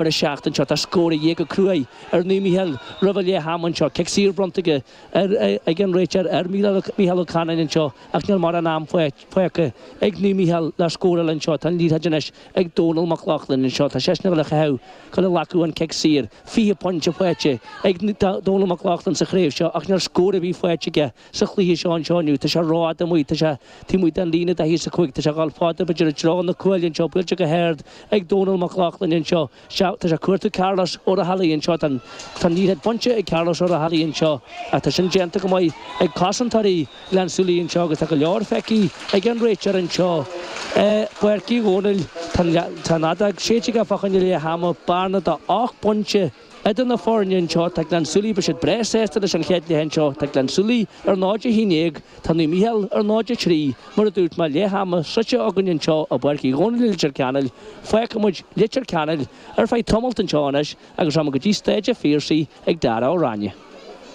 ar a seacht anseo. Tá scór de dhíth go cruaidh ar Naomh Micheál roimh a leath ama anseo. Cic saor bronnta aige ar ag an réiteoir ar Micheál Ó Canainn anseo ach níl mórán am fágtha ag Naomh Micheál le scóráil anseo. Tá an liathróid anois ag Dónal Mac Lochlainn anseo. Tá seisean a bhfuil a chaitheamh go le lagú an cic saor. Fiche pointe faighte ag Dónal Mac Lochlainn sa chraobh seo ach níl scór ar bith faighte aige. sa chluiche seo anseo inniu. Tá sé rófhada amuigh, tá sé taobh amuigh den líne daichead a cúig, tá sé dhul fada b'fhéidir i dtreo na cuaille anseo, buailte go hard ag Dónal Mac Lochlainn anseo. Sea, tá sé ag cuartú Carlos Ó Raghallaigh anseo, tá an liathróid bainte ag Carlos Ó Raghallaigh anseo ach tá sin déanta go maith ag cosantóirí Ghleann tSúilí anseo agus tá go leor feicthe ag an réiteoir anseo i bPáirc Uí Dhónaill. Tá an fheadóg séidte aige fá choinne leath ama, bearna de ocht bpointe, Idir na foirne anseo, tá Gleann tSúilí, beidh siad breá sásta leis an chéad leath anseo. Tá Gleann tSúilí ar 0-11, tá Naomh Micheál ar 0-3, mar a dúirt mé, leath ama sroichte againn anseo i bPáirc Uí Dhónaill i Leitir Ceanainn. Fágfaidh muid Leitir Ceanainn ar feadh tamalt anseo anois agus rachaimid go dtí Staid a' Phiarsaigh ag Darragh Ó Ráinne.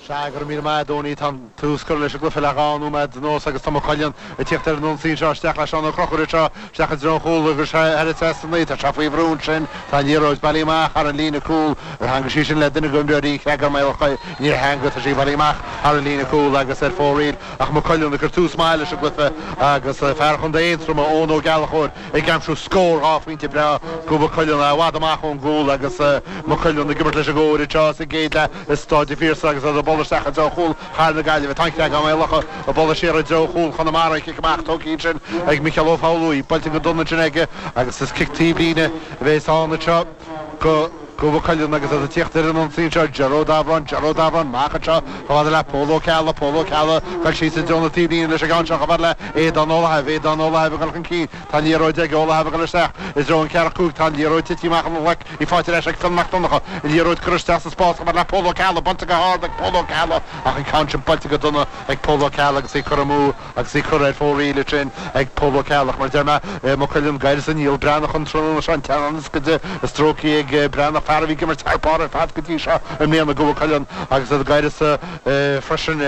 Sea go raibh míle maith agat a Dhónaí. Tá an tús curtha leis an gcluiche le dhá nóiméad anuas agus tá Maigh Cuilinn ag tíocht ar an ionsaí anseo. Isteach le Seán Ó Conchúir anseo, isteach i dtreo an chúl agus ar ais sa 9. Tá sé faoi bhrú ansin. Tá an liathróid bailithe amach thar an líne cúl. Ar theangmhaigh sí sin le duine de imreoirí Creagán Maigh Locha. Níor theangmhaigh. Tá sí bailithe amach thar an líne cúl agus ar fóraoil ach Maigh Cuilinn ag cur tús maith leis an gcluiche agus fear chontae Aontroma, Eoin Ó Gallchóir, ag aimsiú scór dhá phointe breá do Mhaigh Cuilinn, i bhfad amach ón gcúl agus Maigh Cuilinn ag imirt leis an gcóir anseo sa gcéad leath. I Staid an Phiarsaigh agus iad ag bualadh isteach i dtreo chúl Chathair na Gaillimhe. Tá an Creagán-Maigh Locha ag bualadh siar i dtreo chúl Chonamara, an cic amach tógtha ansin ag Micheál Ó Foghludha. Buailte go dona ansin aige agus is cic taobhlíne a bhéas ann anseo. do Mhaigh Cuilinn agus iad ag tíocht ar an ionsaí anseo Gearóid Ó Dábhoireann Gearóid Ó Dábhoireann amach anseo chomh fada le Pól Ó Ceallaigh Pól Ó Ceallaigh ag dul síos i dtreo na taobhlíne leis an gceann seo chomh fada le Aodán Ó Laithimh Aodán Ó Laithimh ag dul chun cinn Tá an liathróid ag Ó Laithimh ag dul isteach i dtreo an ceathracha cúig Tá an liathróid tite amach óna ghlaic í faighte ar ais ag Fionn Mac Donncha an liathróid curtha isteach sa spás chomh fada le Pól Ó Ceallaigh bainte go hard ag Pól Ó Ceallaigh ach an ceann sin buailte go dona ag Pól Ó Ceallaigh agus í curtha amú agus í curtha ar fóraoil ansin ag Pól Ó Ceallaigh. Mar a deir mé, Maigh Cuilinn d'uireasa Niall Breathnach an tráthnóna seo an teannán ioscaide stróicthe ag Breathnach, fear a bhí ag imirt thar barr ar fad go dtí seo i mbliana. do Mhaigh Cuilinn agus iad d'uireasa freisin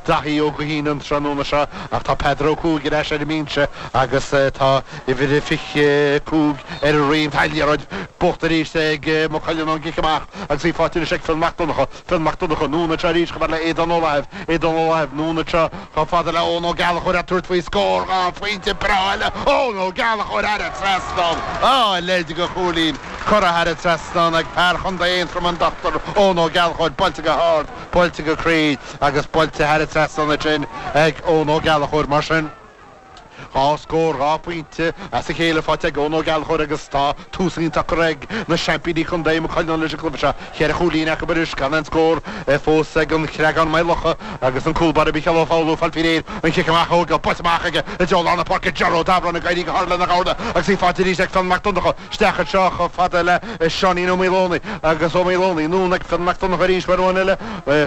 Daithí Ó Gaoithín an tráthnóna seo ach tá Peadar Ó Cuaig ar ais ar an mbinse agus tá uimhir a fiche cúig ar a dhroim. Tá an liathróid buaite arís ag Maigh Cuilinn ón gcic amach agus í faighte anois ag Fionn Mac Donncha. Fionn Mac Donncha, anonn anseo arís chomh fada le Aodán Ó Laithimh, Aodán Ó Laithimh, anonn anseo chomh fada le Eoin Ó Gallchóir ag tabhairt faoi scór dhá phointe breá eile Eoin Ó Gallchóir thar an trasnán a leithéid de chúilín curtha thar an trasnán ag fear Chontae Aontroma An Dr Eoin Ó Gallchóir buailte go hard, buailte go cruinn agus buailte thar an trasnán ansin ag Eoin Ó Gallchóir Mar sin, Dhá scór dhá phointe as a chéile faighte ag Eoin Ó Gallchóir agus tá tús iontach curtha ag na seaimpíní contae, Maigh Cuilinn, leis an gcluiche seo. Ceithre chúilín acu anois gan aon scór fós ag An Creagán-Maigh Locha agus an cúlbáire Micheál Ó Foghlú ag fáil faoi réir an cic amach a thógáil, buailte amach aige i dtreo lár na páirce, Ger Ó Dábhoireann ag éirí go hard lena ghabháil agus í faighte arís ag Fionn Mac Donnacha. isteach anseo chomh fada le Seáinín Ó Maoldomhnaigh agus Ó Maoldomhnaigh, anonn ag Fionn Mac Donnacha arís uair amháin eile,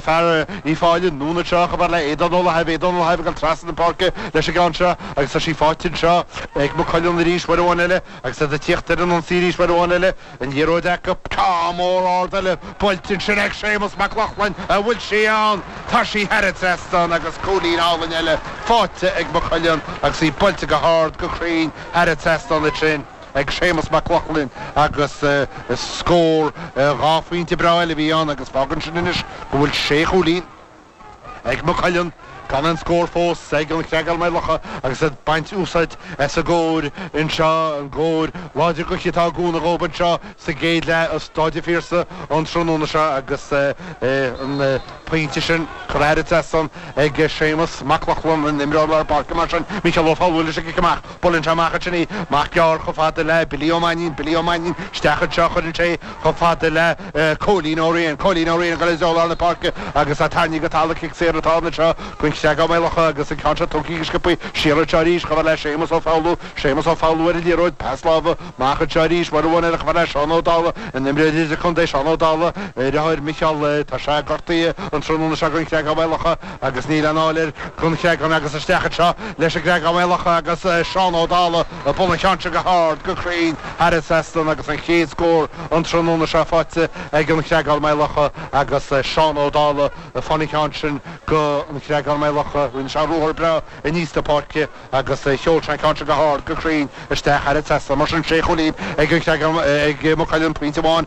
fear Uíbh Fhailí, anonn anseo chomh fada le Aodán Ó Lathaibh, Aodán Ó Lathaibh ag dul trasna na páirce leis an gceann seo agus tá sí faighte anseo ag Maigh Cuilinn arís uair amháin eile agus iad ag tíocht ar an ionsaí arís uair amháin eile, an liathróid acu. Ceann mór ard eile buailte ansin ag Séamus Mac Lochlainn, an bhfuil sí ann? Tá sí thar an trasnán agus cúilín álainn eile faighte ag Maigh Cuilinn agus í buailte go hard, go cruinn thar an trasnán ansin. ag Séamus Mac Lochlainn agus scór dhá phointe breá eile a bhí ann agus fágann sin anois go bhfuil sé chúilín ag Maigh Cuilinn gan aon scór fós ag An Creagán-Maigh Locha agus iad ag baint úsáid as an gcóir anseo, an gcóir láidir gaoithe atá ag cúnamh dóibh anseo sa gcéad leath i Stáid an Phiarsaigh an tráthnóna seo agus an pointe sin curtha thar an trasnán ag Séamus Mac Lochlainn, an t-imreoir lár páirce mar sin, Micheál Ó Foghlú leis an gcic amach. Buaileann sé amach ansin í, amach gearr chomh fada le Billy Ó Mainín, Billy Ó Mainín isteach anseo, cuireann sé í chomh fada le Cóilín Ó Riain, Cóilín Ó Riain ag dul i dtreo lár na páirce agus é tarraingthe go talamh, cic saor atá ann anseo don Chreagán-Maigh Locha agus an ceann seo tógtha go sciopthaí siar anseo arís chomh fada le Séamus Ó Foghlú, Séamus Ó Foghlú ar an liathróid, pas láimhe amach anseo arís, uair amháin eile chomh fada le Seán Ó Dálaigh, an t-imreoir idirchontae Seán Ó Dálaigh, a dheartháir Micheál, tá sé gortaithe an tráthnóna seo don Chreagán-Maigh Locha. Agus níl aon fháil air don Chreagán agus isteach anseo leis an gCreagán-Maigh Locha agus Seán Ó Dálaigh ag bualadh an cheann sin go hard, go cruinn thar an trasnán agus an chéad scór an tráthnóna seo faighte ag An Creagán-Maigh Locha agus Seán Ó Dálaigh ag fáil an cheann sin go An Creagán-Maigh Locha. Rinne sé ruathar breá aníos na páirce agus sheol sé an ceann sin go hard, go cruinn isteach thar an trasnán. Mar sin sé chúilín ag An Creagán, ag Maigh Cuilinn pointe amháin,